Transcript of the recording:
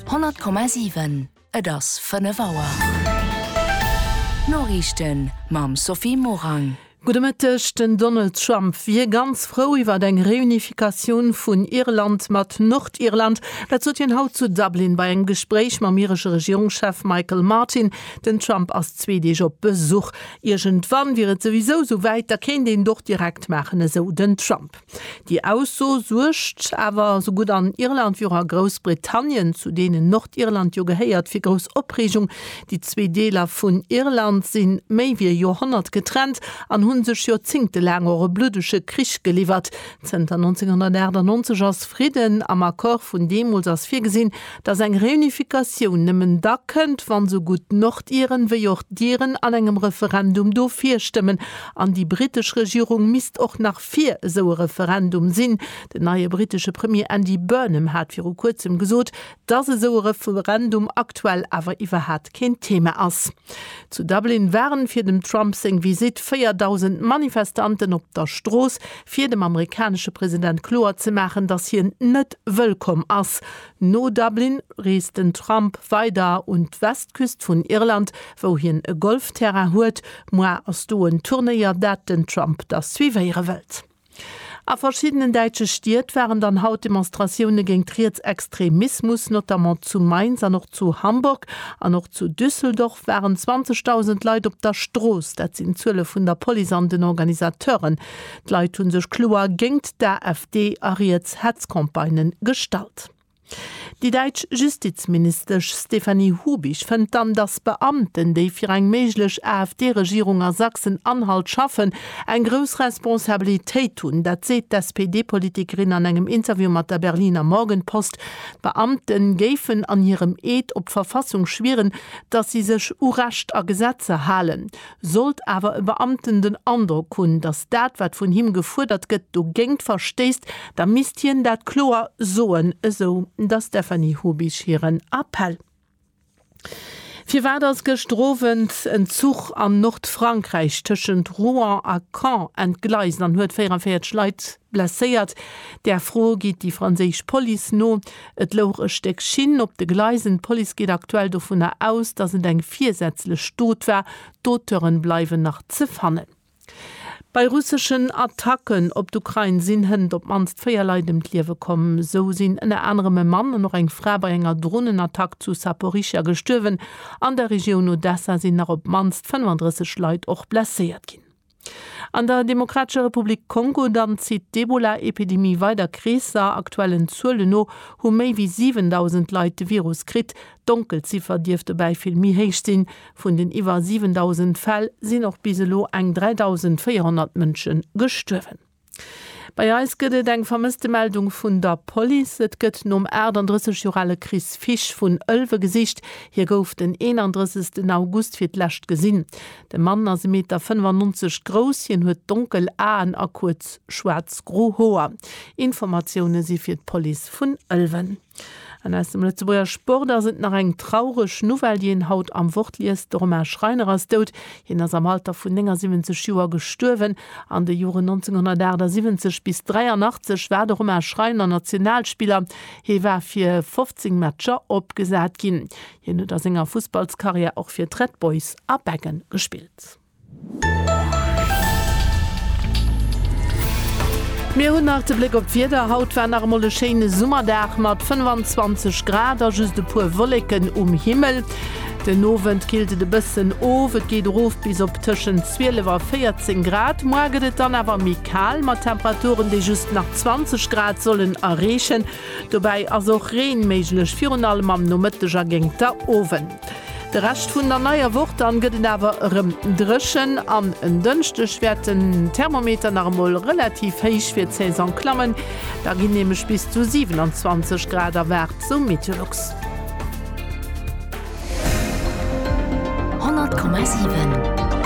100,7 Et ass 5 Auer. D'Noriichten mam Sophie Morang. Gudde Mëtteg, Den Donald Trump wier ganz frou iwwert eng Reunificatioun vun Irland mat Nordirland. Dat sot hien haut zu Dublin bei engem Gespréich mam iresche Regierungschef Michael Martin. Den Trump ass zwee Deeg op Besuch. Iergendwann wier et souwisou esou wäit, da kéint een et och direkt maachen, esou den Trump. Déi Ausso suergt awer esou gutt an Irland wéi och a Groussbritannien, zu deenen Nordirland jo gehéiert, fir grouss Opreegung. Déi zwee Deeler vun Irland si méi wéi e Joerhonnert getrennt an hu sech joerzéngtelaang och e bluddege Krich geliwwert. Zënter 1998 ass Fridden. Am Accord vun deemools ass virgesinn, datt eng Reunifikatioun nëmmen da kënnt, wann esou gutt d'Nordiren wéi och d'Iren an engem Referendum dofir stëmmen. An déi britesch Regierung misst och nach. fir esou e Referendum sinn. Den neie brittesche Premier Andy Burnham hat viru kuerzem gesot, dass esou e Referendum aktuell awer iwwerhat keen Thema ass. Zu Dublin waren fir dem Trump seng Visitt 4.000 Manifestanten op der Strooss, fir dem amerikanesche President kloer ze maachen, dass hien net wëllkomm ass. No Dublin reest den Trump weider un d'Westküst vun Irland, wou hien e Golfterrain huet. Moi ass do en Turnéier, dat den Trump da suivéiere wëllt. A verschiddenen däitsche Stied waren dann haut Demonstratioune géint Rietsextremismus, notamment zu Mainz an och zu Hamburg. An och zu Düsseldorf waren 20.000 Leit op der Strooss, dat sinn d'Zuele vun der Police an den Organisateuren. D'Leit hu sech kloer géingt d'AfD a riets Hetzcampagnë gestallt. Déi däitsch Justizministesch Stefanie Hubich fënnt dann, datt Beamten, déi fir eng méiglech AfD-Regierung a Sachsen-Anhalt schaffen, eng grouss Responsabilitéit hunn. Dat seet d'SPD-Politikerin an engem Interview mat der Berliner Morgenpost. D'Beamte géifen an hirem Eed op d'Verfassung schwieren, datt si sech u Recht a Gesetzer halen. Sollt awer e Beamten den Androck hunn, datt dat, wat vun him gefuerdert gëtt, dogéingt verstéisst, da misst hien dat kloer soen, esou der Stéphanie Hubisch hiren Appell. Firwat ass gëschter Owend en Zuch an Nordfrankräich tëschent Rouen a Caen entgleist an huet 44 Leit Blesséiert. Där Fro geet déi franséisch Police no. Et louch e Stéck Schinn op de Gleisen. D'Police geet aktuell dovunner aus, datt et eng virsätzlech Dot war. D'Auteuren bleiwen nach ze fannen. Bei russeschen Attacken op d'Ukrain sinn hënt op d'mannst véier Leit ëm d'Liewe komm. Esou sinn ënner anerem e Mann an och eng Fra bei enger Dronenattack zu Saporischschja gestuerwen. An der Regioun Odessa sinn nach op d'mannst 35 Leit och blesséiert ginn. An der Demokratescher Republik Kongo dann zitt d'Ebola-Epidemie weider Kreesser. Aktuellen Zuelen no hu méi wéi 7.000 Leit de Virus kritt. D'Donkelziffer dierft dobäi vill méi héich sinn. Vun den iwwer 7.000 Fäll sinn och bis elo eng 3.400 Mënsche gestuerwen. Bei eis gëtt et eng Vermësstemeldung vun der Police. Et gëtt nom 38 Joer ale Chris Fisch vun Ëlwe gesicht. Hie gouf den 31 August fir d'lescht gesinn. De Mann ass e Meter 95 grouss. Hien huet donkel Aen a kuerz schwaarz-gro Hoer. Informatioune si fir d'Police vun Ëlwen. An aus dem Lëtzebuerger Sport ass et nach eng traureg Nouvelle, déi een haut am Wort liest, De Romain Schreiner ass dout. Hien ass am Alter vun 79 Joer gestuerwen. An de Joren 1978 bis 83 war de Romain Schreiner Nationalspiller. Hie war fir 15 Matcher opgesat ginn. Hien huet a senger Fussballskarriär och fir d'Red Boys a Beggen gespillt. Mir hunn nach de Bléck op d'Wieder, Haut war nach emol e schéine Summerdag mat 25 Grad a just e puer Wolleken um Himmel. Den Owend killt et e bëssen of, et geet erof bis op tëschent 12 a 14 Grad. Moar gëtt et dann awer méi kal mat Temperaturen, déi just nach 20 Grad sollen erreechen. Dobäi ass och Reen méiglech, virun allem am Nomëtteg a géingt der Owend. De Rescht vun der neier Woch dann gëtt et awer erëm dréchen an en Dënschdeg wäert den Thermometer nach emol relativ héich fir d'Saison klammen. Da ginn nämlech bis zu 27 Grad erwaart, esou Meteolux.